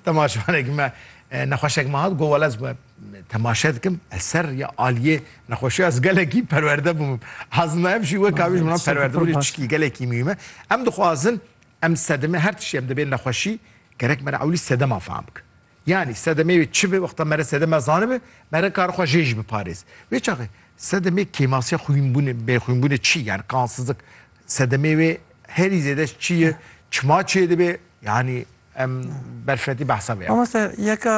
Temaşevanekî me nexweşek me hat got wela ez me temaşe dikim ez ser rêya aliyê nexweşiya ez gelekî perwerde bûm. Aslında ev jî wek kabî ji min re perwerde bû çikî gelekî mîyû me. Em dixwazin em sedemê her tiştê em dibê nexweşî gerek me re ewlî sedeman fam bikin. Yanî sedemê wê çi bi wexta me re sedema zanibe me re kar xwe jê jî biparêz. Wê çaxê sedemê kêmasiya xwînbûnê bêxwînbûnê çi ye yanî qansizlik sedemê wê herî zêde çi ye çima çêdibe yanî Em berfireti behsa vê ya. Mamoste yeka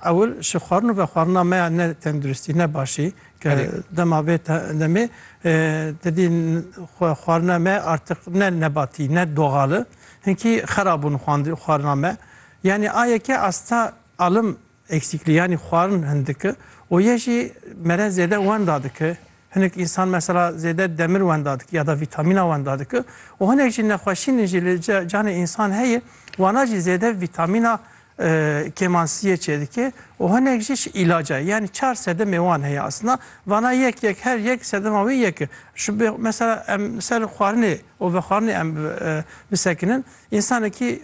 ewil ji xwarin û vexwarina me ya ne tenduristî ne başî ke dema vê demê tu dî xwarina me artiq ne nebatî ne doxali hinkî xera bûn xwarina me yanî a yeke asta alim Eksîkliyanî xwarin hin dike û yê jî mere zêde wenda dike. Hinek însan mesela zêde demir wenda dike ya da vîtamîna wenda dike û hinek jî nexweşînên jî li canê însan heye wana jî zêde vîtamîna kêmansiyê çêdike û hinek jî ji îlaca ye. Yanî çar sedemê wan heye aslina vana yek yek her yek sedema wê yek e. Ji bo mesela em li ser xwarinê û vexwarinê em bisekinin. Însanekî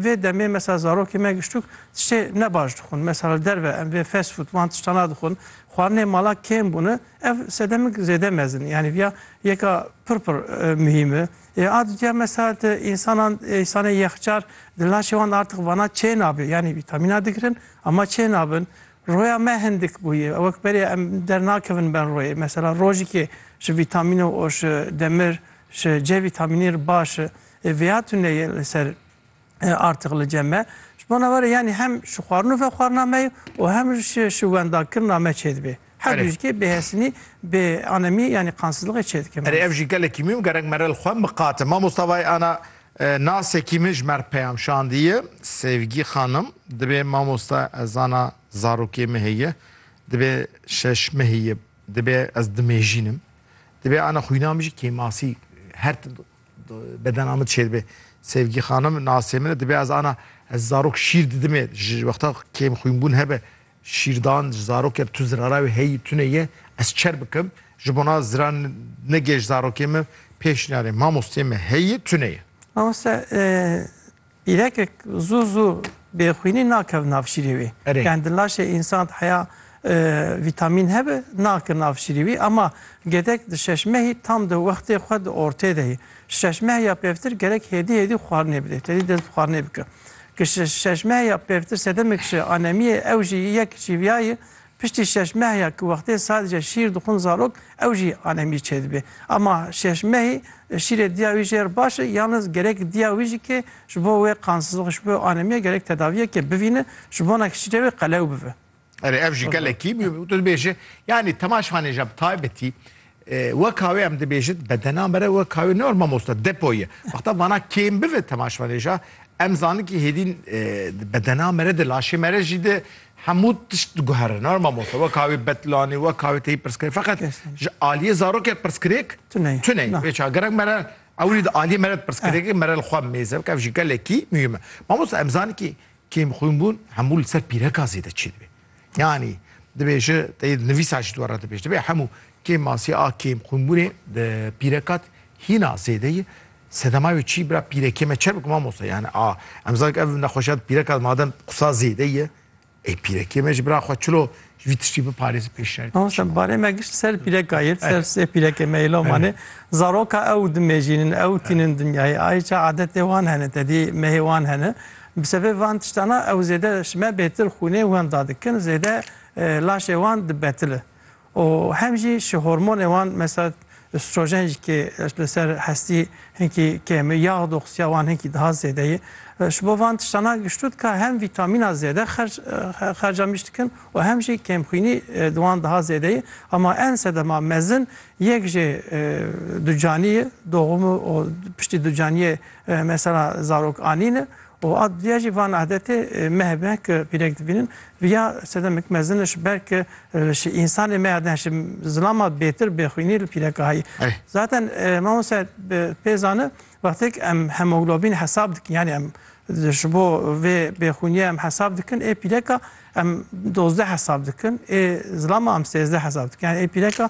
vê demê mesela zarokê me giştuk tiştê ne baş dixwin. Mesela li derve em vê fast food wan tişta nadixwin. Xwarinê mala kêm bûne. Ev sedemik zêde mezin e. Yanî viya yeka pir pir muhîm e. Ê a dûtiya mesela di însanan însanê yexcar di laşê wan de artiq vana çê nabe. Yanî vîtamîna digirin ama çê nabin. Roya me hindik bûye. Wek berê em dernakevin ber royê. Mesela rojikê ji vîtamîno û ji demir ji C vîtamînî re baş e. Ê vêya tuneyê li ser artiq li cem me. Ji bo navara yanî hem şixwarin û vexwarina me ye û hem ji ji wendakirina me çêdibê. Her du jîkê bêhesinî, bê anemî yanî qansizliqê çêdike Erê ev jî gelekî mûhîm gerek mere li xwe miqate. Mamosta Vay Ana nasekî min ji me re peyam şandiye. Sevgi Xanim, Dibê mamosta ez zana zarokê min heye. Dibê şeş min heye. Dibê ez dimêjînim. Dibê ana xwîna min jî kêmasî her tim Bedena min çêdibe. Sevgî xanim nasê min e dibe ez ana ez zarok şîr didimê ji wexta kêm xwînbûn hebe şîrdan ji zarokê tu zirara wê heyî tune ye ez çer bikim ji bona ziran negê ji zarokê min pêş nînarê mamostê me heyî tune ye. Mamoste Îrekek zû zû bê xwînî nakev nav şîrê wî. Erê. Yani di laşê însan de heya vîtamîn hebe nake nav şîrê wî ama gedek di şeş mehî tam di wextê xwe di ortê de yê. Şeş meh ya pevtir gerek hêdî hêdî xwarinê bidê. Tedî dest bi xwarinê bike. Ki şeş meh ya pevtir sedemek ji anemiyê ew jî yek çîviyayê Piştî şeş meh ya ku wextê sadece şîr dixwin zarok ew jî anemî çêdibê. Ema şeş mehî şîrê diya wî jêr baş e yalnız gerek diya wî jî kê ji bo wê qansızlix ji bo wê anemîya gerek tedaviyekê bivîne ji bona ku şîrê wê qelew bibe. Erê ev jî gelekî tu dibêje yanî temaşvanê ja bi taybetî Weka wê em dibêjin bedena me re weka wê ne mamoste depo ye. Wexta vana kêm bive temaşvanêja em zanin kî hêdîn di bedena me re di laşê me re jî di hemû tişt diguhere ne mamoste weka wê betlanê weka wê teyî pirsgirê feqet ji aliyê zarokê pirsgirêk tuney vê çawa gerek me re ewilî di aliyê me re pirsgirêkê me re li xwe mêze bike ev jî gelekî muhîm e. Mamoste em zanin kî kêmxwînbûn hemû li ser pîreka zêde çêdibê. Yanî divê ji teyê nivîsa jî dwara te pêş dibe hemû kêm masî a kêm xwînbûnê di pîrekat hîna zêde ye. Sedema wê çî bira pîrekê me çer bik mamosta yani a em zak ev nexweşiya di pîrekat madem qisa zêde ye ê pîrekê me ji bira xwe çilo ji vî tiştî biparêzi pêş şer. Mamosta barê me gişt ser pîreka yê ser sê pîrekê me îlo mane zaroka ew dimêjînin ew tînin dinyayê ayê ça adetê wan hene tedî mehê wan hene. Bi sebê van tiştana ew zêde ji me bêtir xûnê wenda dikin, zêde laşê wan dibetile û hem jî ji hormonê wan mesela îstrojen jî kê li ser hestî hinkî kêm e, yax doxsiya wan hinkî daha zêde ye. Ji bo van tiştana giştu dika hem vîtamîna zêde xerc xerca mîş dikin û hem jî kêmxwînî di wan daha zêde ye. Hema en sedema mezin yek jê ducanî ye, doxum û piştî ducanîyê Mesela zarok anîne û a diya jî van adetê me hebe ke pîrek dibînin riya sedemek mezin e ji ber ke ji însanê me ya din ji zilama bêtir bêxwînî li pîrekahayî. Zaten mamoste pê zane wextêk em hemoglobîn hesab dikin yanî em ji bo vê bêxwînîye em hesab dikin ê pîreka em dozdeh hesab dikin ê zilama em sêzdeh hesab dikin yanî ê pîreka